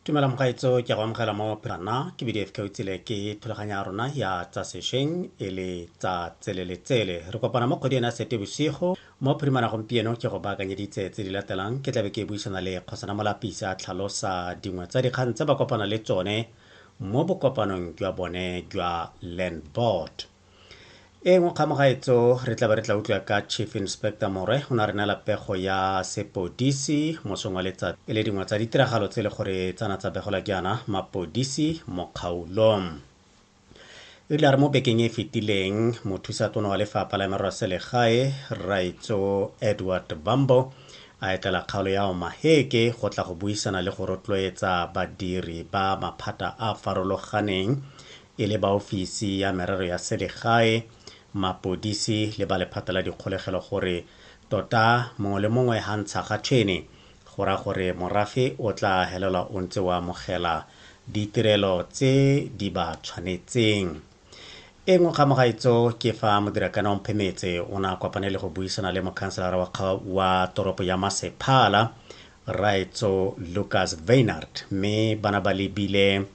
tumela mogaetso ke go amogela mo phana ke bdf ka utsile ke thulaganyo ya rona ya tsa sešweng e le tsa tseleletsele re kopana mo kgwedi ena sete bosigo mo phirimana gompieno ke go baakanyeditse tse di latelang ke tlabe ke buisana le kgosana molapisa a tlhalosa dingwe tsa dikgang tse ba kopana le tsone mo bokopanong jwa bone jwa land board e nngwe kgamagaetso re tla ba re tla utlwa ka chief inspector morwe o ne a re neela pego ya sepodisi mosong wa letsatsi e le dingwe tsa ditiragalo tse e le gore tsana tsa begola ke yana mapodisi mo kgaolong e rile a re mo bekeng e e fetileng mothusa tona wa lefapha la merero ya selegae raitso edward bambo a etlela kgaolo ya omaheke go tla go buisana le go rotloetsa badiri ba maphata a farologaneng e le ba ofisi ya merero ya selegae, mapodisi le ba lephata la dikgolegelo gore tota mongwe le mongwe ha ntsha ga tšhene go ra gore morafe o tla helelwa o ntse o amogela ditirelo tse di ba tshwanetseng. E nngwe ga mogaitso ke fa Modirakana Omphemetse o ne a kopane le go buisana le mokhanselara wa, wa toropo ya Masephala Raetso Lucas Veinard mme bana ba lebile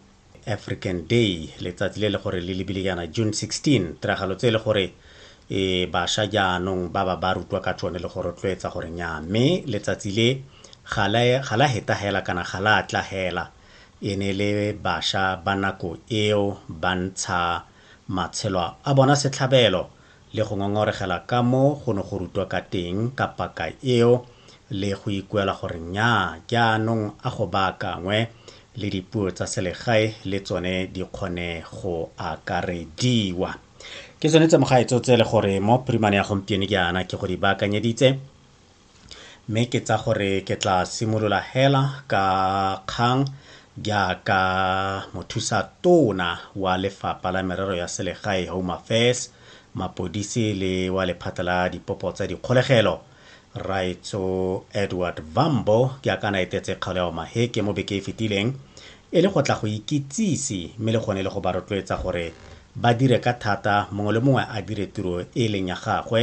african day letsatsi le le gore le lebile jaana june 16 tiragalo tse e le gore e basha jaanong ba ba ba rutwa ka tsone le go rotloetsa gore nya mme letsatsi le ga la heta hela kana ga la tla hela e ne le basha ba nako eo ba ntsha matshelo a bona setlhabelo le go ngongoregela ka mo go ne go rutwa ka teng ka paka eo le go ikuela gore nnyaa jaanong a go baakangwe le dipuo tsa selegae le tsone di kgone go akarediwa. Ke tsone tse mogaetsho tse le gore mo Primane ya gompieno jaana ke go di baakanyeditse, Mme ke tsa gore ke tla simolola hela ka kgang jaaka mothusa tona wa lefapha la merero ya selegae home affairs mapodisi le wa lephata la dipopo tsa dikgolegelo raetso edward vambo ke a kana etetse kgaolo ya omaheke mo beke e fetileng e le go tla go ikitsise mme le gone le go ba rotloetsa gore ba dire ka thata mongwe le mongwe a dire tiro e leng ya gagwe